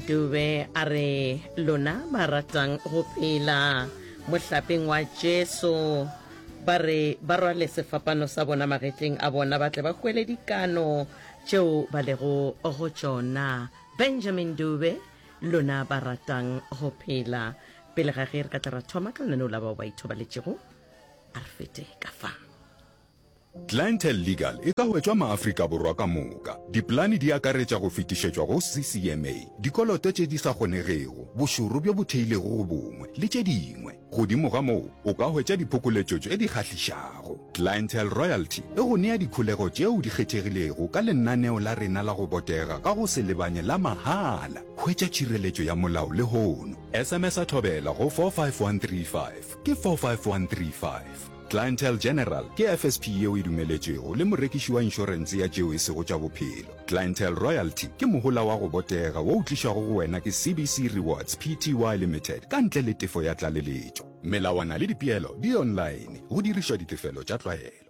Dube a re, Lona ba ratang go phela mohlapeng wa Jesu, ba re ba rwale sefapano sa bona magetleng a bona ba tle ba hwele dikano tšeo ba lego go tšona. Benjamin Dube, Lona ba ratang go phela. Pele ga ge re ka tla ra thoma ka lenaneo la bao ba ithobaletšego, a re fete ka fa. Clientele Legal e ka hwetšwa Maafrika Borwa ka moka. Dipolane di akaretša go fetišetšwa go CCMA, dikoloto tše di sa kgonegego, bošoro bjo bo theilego go bongwe, le tše dingwe. Godimo ga moo, o ka hwetša diphokoletšo tše di kgahlišago. Clientele Royalty e go nea dikholego tšeo di kgethegilego ka lenaneo la rena la go botega ka go se lebanye la mahala. Hwetša tšhireletšo ya molao lehono. SMS-a Thobela go 45135, ke 45135. Clientele General ke FSP yeo e dumeletšwego le morekiši wa inšorense ya tšeo e sego tša bophelo. Clientele Royalty ke mohola wa go botega wo o tlišwago go wena ke CBC Rewards Pty Limited ka ntle le tefo ya tlaleletšo. Melawana le dipeelo di online go dirišwa ditefelo tša tlwaelo.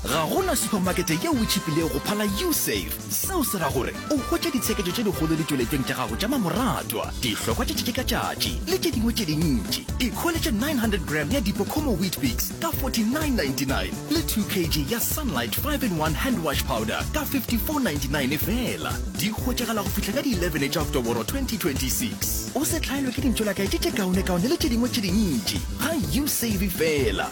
ga gona supermakete yeo o tšhipilego go phala usafe seo se ra gore o hwetša ditshekejo tše dikgolo ditšweletšong tša gago tša mamoratwa dihlokwa tše tšetše ka tšatši le tše dingwe tše dintši ikholetše 900 gram ya dipocomo wheat bix ka 4999 le 2 kg ya sunlight 5 in 1 hand wash powder ka 5499 fela di hwetšagala go fihla ka di-11 tša oktoboro 2026 o se tlhaelwe ke dintšolakae tše tše kaonekaone le tše dingwe tše dintši ga usave fela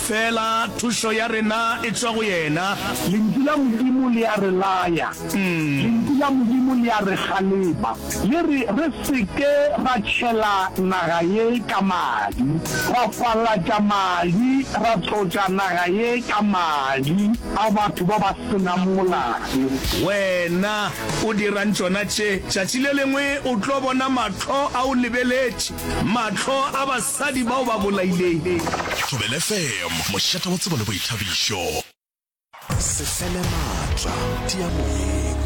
Feela thušo ya rena e tšwa go yena. Lentšu la Modimo le a re laya. Lentšu la Modimo le a re kgalema. Le re re se ke ra tšhela naga ye ka madi, ra falatša madi, ra tlotša naga ye ka madi a batho ba ba se nang molato. Wena o dirang tšona tše? Tšatši le lengwe o tlo bona mahlo a o lebeletše. Mahlo a basadi bao ba bolaileng. Thobela FM, mošate wa tsebo le boithabišo. Se fele maatla, tia moyeng.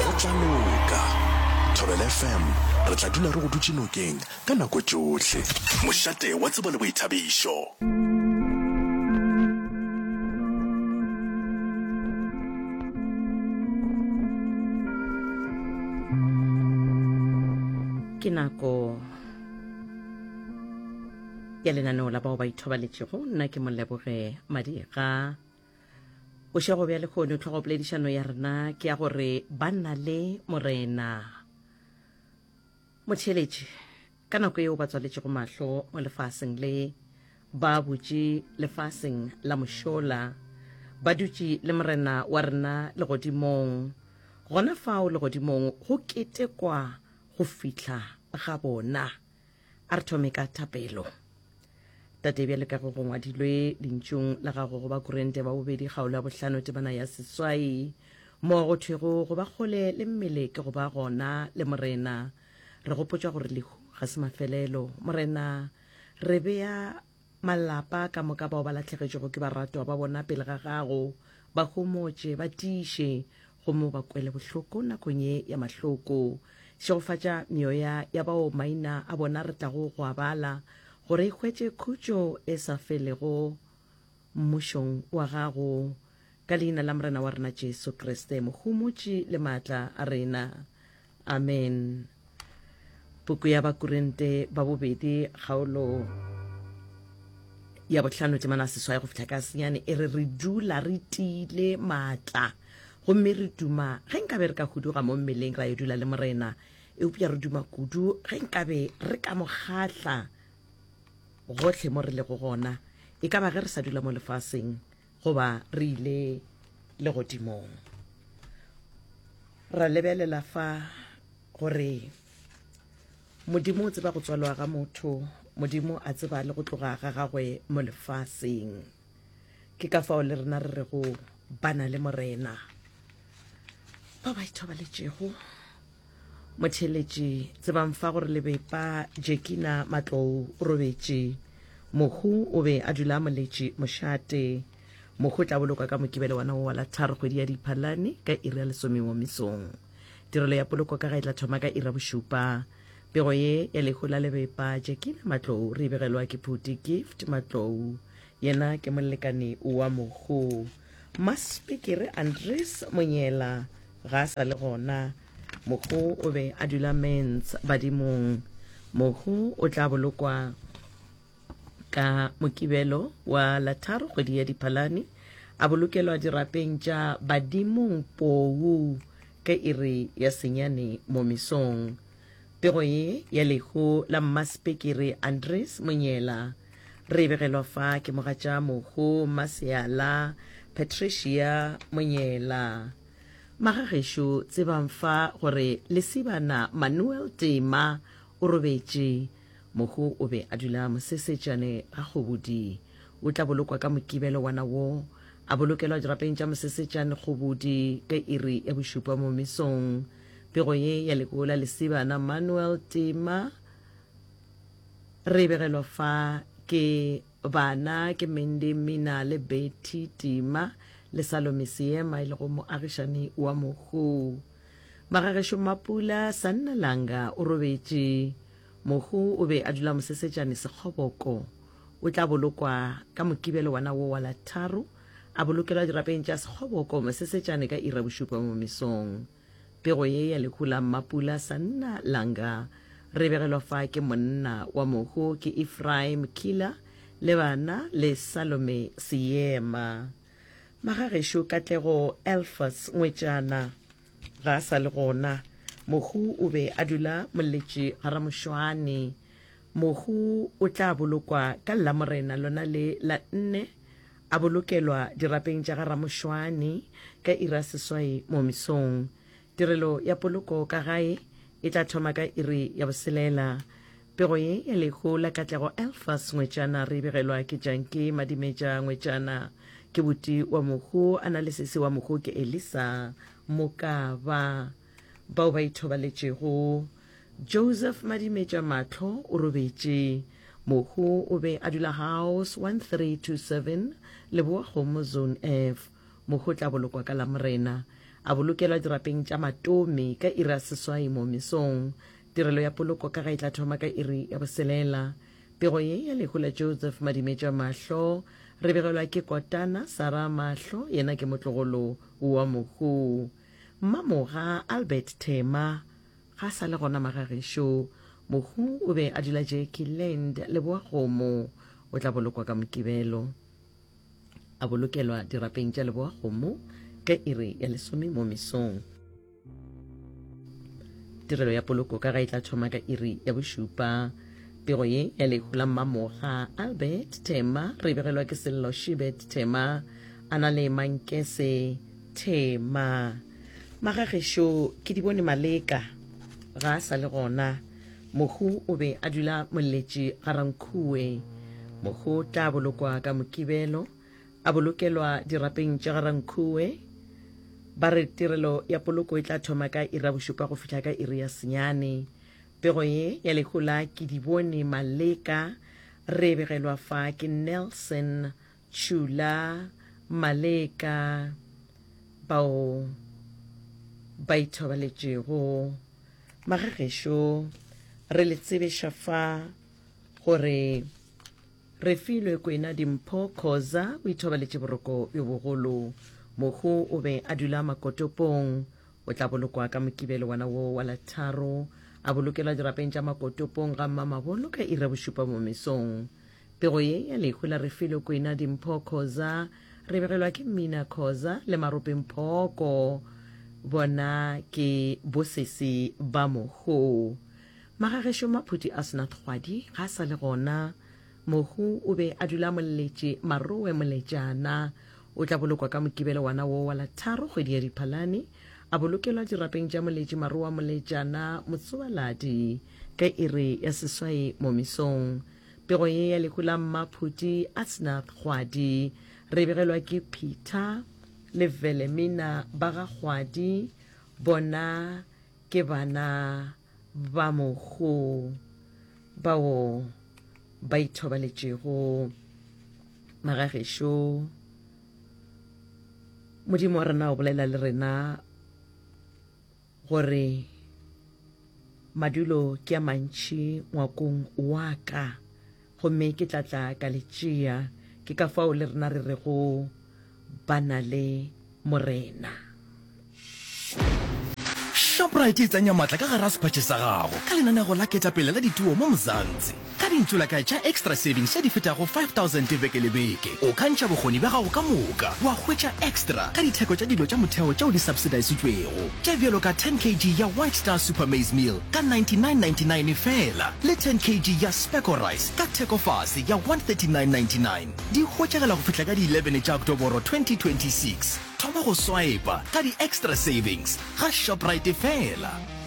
Go tla loka. Thobela FM, re tla dula re go dutše nokeng ka nako tšohle. Mošate wa tsebo le boithabišo. ke nako ya lenaneo la bao ba ithobaletšego nna ke moleboge madiga bošego bja lekgono tlhogopoledišano ya rena ke ya gore ba nna le morena motheletše ka nako yeo ba tswaletšego mahlo mo lefaseng le ba butše lefaseng la mošola ba dutše le morena wa rena legodimong gona fao legodimong go ketekwa go fihla ga bona. A re thome ka thapelo. Tate, bjale ka go go ngwadilwe lentšung la gago go ba Korente wa bobedi kgaolo ya bohlano tebana ya seswai, mo go thwego go ba kgole le mmele ke go ba gona le Morena, re gopotšwa gore lehu ga se mafelelo. Morena, re bea Malapa ka moka bao ba lahlegetšwego ke baratwa ba bona pele ga gago, ba homotše, ba tiiše, gomme o ba kwele bohloko nakong ye ya mahloko. Šegofatša meoya ya bao maina a bona re tlago go a bala, gore e hwetše khutšo e sa felego Mmušong wa gago. Ka Leina la Morena wa rena Jesu Kriste, Mohumotši le Maatla a rena. Amen. Puku ya Bakorinte ba bobedi kgaolo ya bohlano temana seswai go fihla ka senyane e re re dula re tiile maatla gomme re duma ge nkabe re ka huduga mo mmeleng ra yo dula le morena eupša re duma kudu ge nkabe re ka mo kgahla gohle mo re lego gona e ka ba ge re sa dula mo lefaseng Goba re ile legodimong. Ra lebelela fa gore Modimo o tseba go tswalwa ga motho, Modimo a tseba le go tloga ga gagwe mo lefaseng. Ke ka fao le rena re re go bana le Morena ba ba ithobaletšego motheletše tsebang fa gore lebepa jekina matlou o robetše mohu o be a dula a moletše mošate mohu o tla bolokwa ka mokibele wana wo wa la tharo kgwedi ya diphalane ka iri ya lesomengwe mesong tirelo ya poloko ka ga e tla thoma ka ira bošupa pego ye ya lehu la lebepa jekina matlou re e begelwa ke phuti gift matlou Yena ke molekane wa mogo Maspikiri Andries Monyela ga a sa le gona. Mogo o be a dula Mens badimong. Mogo o tla bolokwa ka Mokibelo wa la tharo kgwedi ya Diphalane a bolokelwa dirapeng tša badimong Pou ka iri ya senyane mo mesong. Pego ye ya lehu la Mmaspikiri Andries Monyela re begelwa fa ke mogatša mogo maseala patricia monyela magagešo tsebang fa gore lesibana manuel tema o robetše mogo o be a dula mosesetšane ga kgobodi o tla bolokwa ka mokibelo wana wo a bolokelwa dirapeng tša mosesetšane kgobodi ka iri ya bošupa mo mesong pego ye ya lekola lesibana manuel tema Re begelwa fa ke bana ke Mindy Mmina le Betty Tima le Salome Seema e lego moagišani wa mohu. Magagešo Mmapula Sannalanga o robetše. Mohu o be a dula Mosesetšane Sekgoboko. O tla bolokwa ka Mokibelo wana wo wa la tharo, a bolokelwa dirapeng tša Sekgoboko Mosesetšane ka iri ya bošupa mo mesong. Pego ye ya lehu la Mmapula Sanna Langa re begelwa fa ke monna wa mohu ke Ephraim Kila le bana le Salome Seema. Magagešo Katlego Elfas Ngwetšana ga a sa le gona. Mohu o be a dula Molletše ga Ramošoane. Mohu o tla bolokwa ka Lamorena lona le la nne, a bolokelwa dirapeng tša ga Ramošoane ka iri ya seswai mo mesong. Tirelo ya poloko ka gae e tla thoma ka iri ya boselela. Pego ye ya lehu la Katlego Elfas Ngwetšana re e begelwa ke Janki Madimetša Ngwetšana. Ke buti wa Mohu, a na le sesi wa Mohu ke Elisa Mokaba. Bao ba ithobaletšego Joseph Madimetša Mahlo o robetše. Mohu o be a dula House 1327 Leboa Kgomo Zone F. Mohu o tla bolokwa ka Lamorena. A bolokelwa dirapeng tša Matomi ka iri ya seswai mo mesong. Tirelo ya poloko ka ga e tla thoma ka iri ya boselela. Pego ye ya lehu la Joseph Madimetša Mahlo re begelwa ke Kotana Sarah Mahlo yena ke motlogolo wa mohu. Mmamoga Albert Thema ga a sa le gona magagešo. Mohu o be a dula Jackie Land, Leboakgomo. O tla bolokwa ka Mokibelo. A bolokelwa dirapeng tša Leboakgomo ka iri ya lesome mo mesong. Tirelo ya poloko ka ga e tla thoma ka iri ya bošupa. Pego ye ya lehu la Mmamoga Albert Thema re begelwa ke Sello Shibet Thema a na le Mankese Thema. Magagešo ke di bone Maleka ga a sa le gona. Mohu o be a dula molletši ga Rankhuwe. Mohu o tla bolokwa ka Mokibelo, a bolokelwa dirapeng tša ga Rankhuwe. Ba re tirelo ya poloko e tla thoma ka iri ya bošupa go fihla ka iri ya senyane. Pego ye ya lehu la Kedibone Maleka re e begelwa fa ke Nelson Tšula maleka bao ba ithobaletšego. Magagešo, re le tsebeša fa gore re filwe kwena dimpho Khoza o ithobaletše boroko bjo bogolo. Mohu o be a dula makotopong. O tla bolokwa ka Mokibelo wona wo wa la tharo, a bolokelwa dirapeng tša makotopong ga Mmamabolo ka iri ya bošupa mo mesong. Pego ye ya lehu la Refilwe Kwena Dimpho Khoza re begelwa ke Mmina Khoza le Marope Mphoko bona ke bosesi ba mohu. Magagešo Maphuti a sena thwadi ga a sa le gona. Mohu o be a dula Moletše Marowe Moletšana. O tla bolokwa ka Mokibelo wana wo wa la tharo kgwedi ya Diphalane a bolokelwa dirapeng tša Moletše Marowa Moletšana Motsoaladi ka iri ya seswai mo mesong. Pego ye ya lehu la mmaphuti Asnath Kgwadi re begelwa ke Peter le Velemina ba ga Kgwadi, bona ke bana ba mohu bao ba ithobaletšego magagešo. Modimo wa rena o bolela le rena. Gore madulo ke a mantši ngwakong wa ka, gomme ke tla tla ka le tšea. Ke ka fao le rena re rego ba na le Morena. Shoprite e tsenya maatla ka gare ga sephatše sa gago ka lenanego la ketapele la dituo mo Mzansi. Ka dintsulakae tša Extra Savings tše di fetago 5000 beke le beke, o ka ntšha bokgoni bja gago ka moka wa hwetša extra ka ditheko tša dilo tša motheo tšeo di subsidisitšwego, tše bjalo ka 10 kg ya White Star Super Maize Meal ka 99.99 feela le 10 kg ya Specco Rice ka thekofase ya 139.99. Di hwetšagela go fihla ka di 11 tša Oktoboro 2026. Thoma go swaepa ka di-Extra Savings ga Shoprite feela.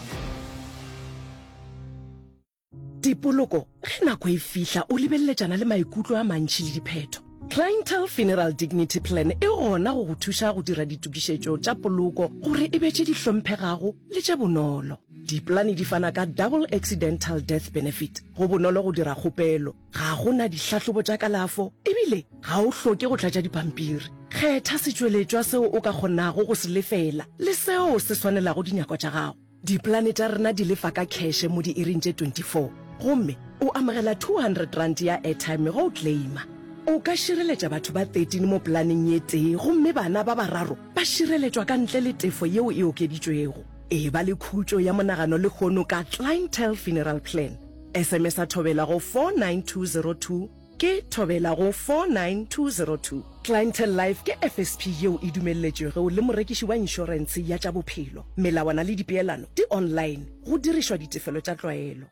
Dipoloko, ge nako e fihla o lebeleletšana le maikutlo a mantši le diphetho. Clientele Funeral Dignity Plan e gona go go thuša go dira ditokišetšo tša poloko gore e be tše di hlomphegago le tše bonolo. Dipolane di fana ka Double Accidental Death Benefit, go bonolo go dira kgopelo, ga go na dihlahlobo tša kalafo ebile ga o hloke go tlatša dipampiri. Kgetha setšweletšwa seo o ka kgonago go se lefela le seo se swanelago dinyako tša gago. Dipolane tša rena di lefa ka kheshe mo diiring tše 24 gomme o amogela R200 ya airtime ge o claima. O ka šireletša batho ba 13 mo polaneng ye tee gomme bana ba bararo ba šireletšwa ka ntle le tefo yeo e okeditšwego. Eba le khutšo ya monagano lehono ka Clientele Funeral Plan. SMS-a thobela go 49202. Ke thobela go 49202. Clientele Life ke FSP yeo e dumelletšwego le morekiši wa inšorense ya tša bophelo. Melawana le dipeelano di online, go dirišwa ditefelo tša tlwaelo.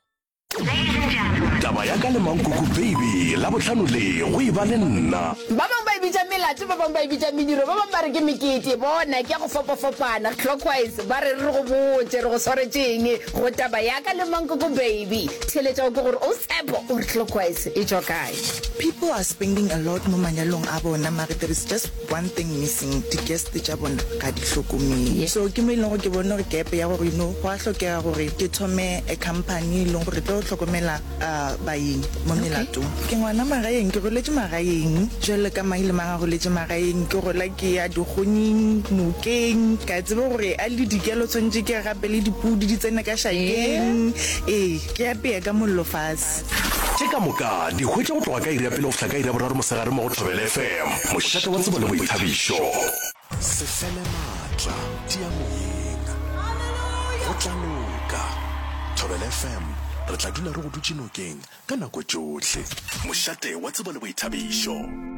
Taba ya ka le Mankuku Baby Labohlano le go e ba le nna. Ba bangwe ba e bitša melato, ba bangwe ba e bitša mediro, ba bangwe ba re ke mekete. Bona, ke ya go fapafapana, clockwise. Ba re re go botše, re go swaretše'ng? Go taba ya ka le Mankoko baby, theeletša go ke gore o Tshepo o re clockwise e tšwa kae? People are spending a lot mo manyalong a bona mare there is just one thing missing, di guest tša bona ga di hlokomele. So ke mo e leng gore ke bone gore gap ya gore you know go a hlokega gore ke thome a company e leng gore e tlo hlokomela. A baeng mo melatong. Okay. Ke ngwana magaeng, ke goletše magaeng. Jalo ka mang le mang a goletše magaeng. Ke gola ke ya dikgoning, nokeng. Ke a tseba gore a le dikelo tshwanetse ke gape le dipudi di tsene ka šakeng. Ee, ee ke apea ka mollo fase. Tše ka moka di hwetša go tloga ka iri ya pele go fihla ka iri ya boraro mosegare mo go Thobela FM, mošate wa tsebo le boithabišo. Se fele maatla, tia moyeng. Go tla loka. Thobela FM, re tla dula re go dutše nokeng ka nako tšohle. Mošate wa tsebo le boithabišo.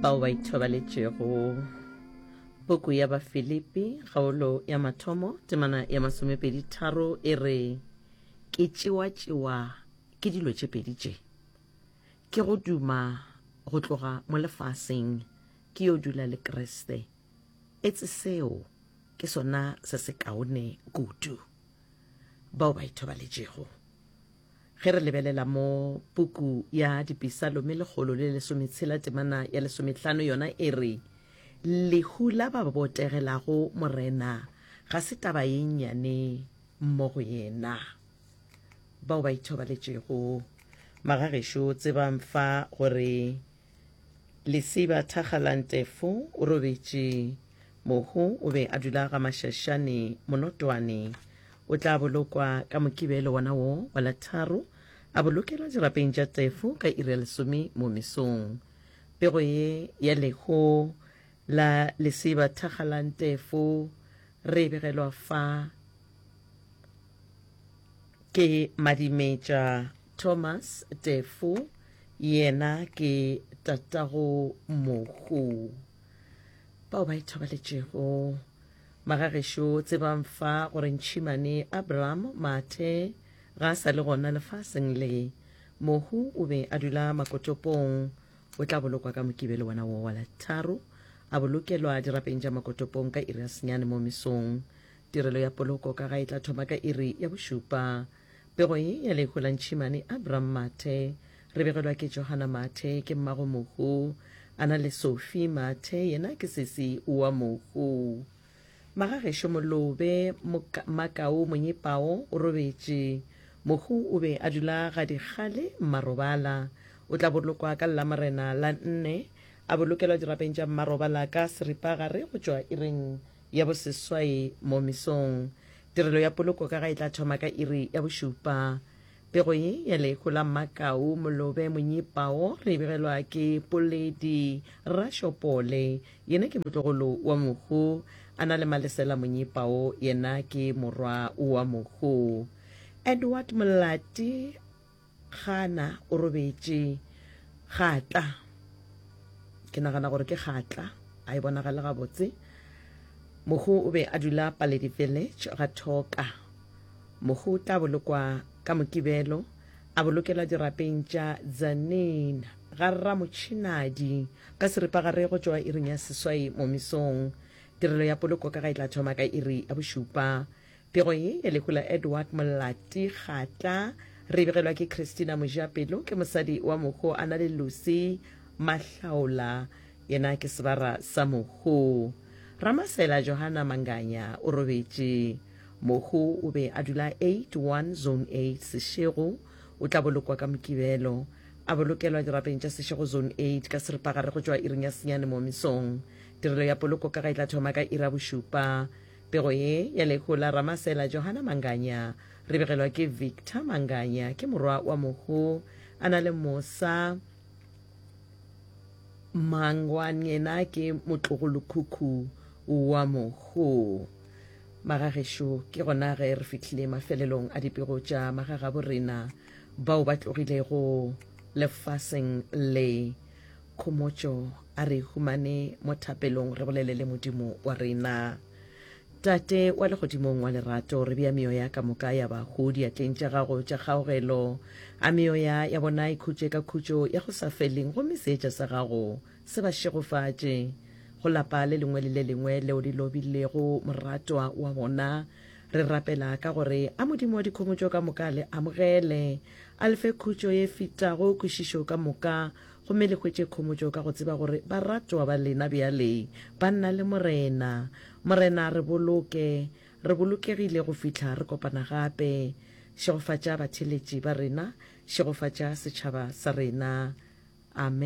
bao ba ithobaletšego puku ya bafilipi kgaolo ya mathomo temana ya masomepedi tharo e re ke tšewatšewa ke dilo tše pedi tše Ke go duma go tloga mo lefaseng ke yo dula le Kriste. Etse seo ke sona se se kaone kudu. Bao ba ithobaletšego. Ge re lebelela mo puku ya Dipisalome lekgolo le lesometshela temana ya lesomehlano yona e re, Lehu la ba botegelago Morena ga se taba ye nnyane mo go yena. bao ba ithobaletšego magagešo tsebang fa gore lesiba thakgalantefo o robetše mohu o be a dula ga mašašane monotwane o tla bolokwa ka mokibelo wona wo wa la tharo a bolokelwa dirapeng tša tefo ka iri ya lesome mo mesong pego ye ya leho la lesiba thakgalantefo re e begelwa fa Ke Madimetša Thomas Tefo, yena ke tatago Mohu. Bao ba ithobaletšego magagešo tsebang fa gore ntšhimane Abraham Mathe ga a sa le gona lefaseng le. Mohu o be a dula Makotopong, o tla bolokwa ka Mokibelo wona wo wa Latharo, a bolokelwa dirapeng tša Makotopong ka iri ya senyane mo mesong. Tirelo ya poloko ka ga e tla thoma ka iri ya bošupa. Pego ye ya lehu la ntšhimane Abram Mathe. Re begelwa ke Johana Mathe, ke mmago Mohu. A na le Sophie Mathe, yena ke sesi wa Mohu. Magagešo Molobe, Moka, Makau Monyepao o robetše. Mohu o be a dula ga dikgale Mmarobala. O tla bolokwa ka Lamorena la nne, a bolokelwa dirapeng tša Mmarobala ka seripagare go tšwa iring Ya boseswai mo mesong. Tirelo ya poloko ka ga e tla thoma ka iri ya bošupa. Pego ye ya lehu la Mmakau Molobe Monyipao re e begelwa ke Poledi Rashopole, yena ke motlogolo wa Mohu, a na le Malesela Monyipao, yena ke morwa wa Mohu. Edward Molati Gana o robetše. Gatla. Ke nagana gore ke Gatla. A e bonagale gabotse. Mohu o be a dula Paledi Village ga Thoka. Mohu o tla bolokwa ka Mokibelo, a bolokelwa dirapeng tša Tzaneen ga Rra Motšhinadi ka seripagare go tšwa iring ya seswai mo mesong. Tirelo ya poloko ka ga e tla thoma ka iri ya bošupa. Pego ye ya lehu la Edward Molati Kgatla re e begelwa ke Christina Mojapelo, ke mosadi wa Mohu a na le Lucy Mahlaola, yena ke sebara sa Mohu. Ramasela Johana Manganya o robetše. Mohu o be a dula 81 Zone 8 Seshego, o tla bolokwa ka Mokibelo, a bolokelwa dirapeng tša Seshego Zone 8 ka seripagare go tšwa iring ya senyane mo mesong. Tirelo ya poloko ka ga e tla thoma ka iri ya bošupa. Pego ye ya lehu la Ramasela Johana Manganya re begelwa ke Victor Manganya ke morwa wa mohu a na le mosa Mangwan yena ke motlogolokhukhu wa mohu. Magagešo ke gona ge re fihlile mafelelong a dipego tša magagabo rena bao ba tlogilego lefaseng le. Khomotšo, A re humane mo thapelong re bolele le Modimo wa rena. Tate wa legodimong wa lerato, re bea meoya ka moka ya bahu diatleng tša gago tša kgaogelo. A meoya ya bona e khutše ka khutšo ya go sa feleng gomme seetša sa gago se ba šegofatše. Go lapa le lengwe le le lengwe leo le lobilego moratwa wa bona, Re rapela ka gore a Modimo wa dikhomotšo ka moka a le amogele, a le fe khutšo ye fetago kwešišo ka moka, gomme le hwetše khomotšo ka go tseba gore baratwa ba lena bjale ba nna le Morena. Morena, re boloke re bolokegile go fihla re kopana gape. Šegofatša batheeletši ba rena. Šegofatša setšhaba sa rena. Amen.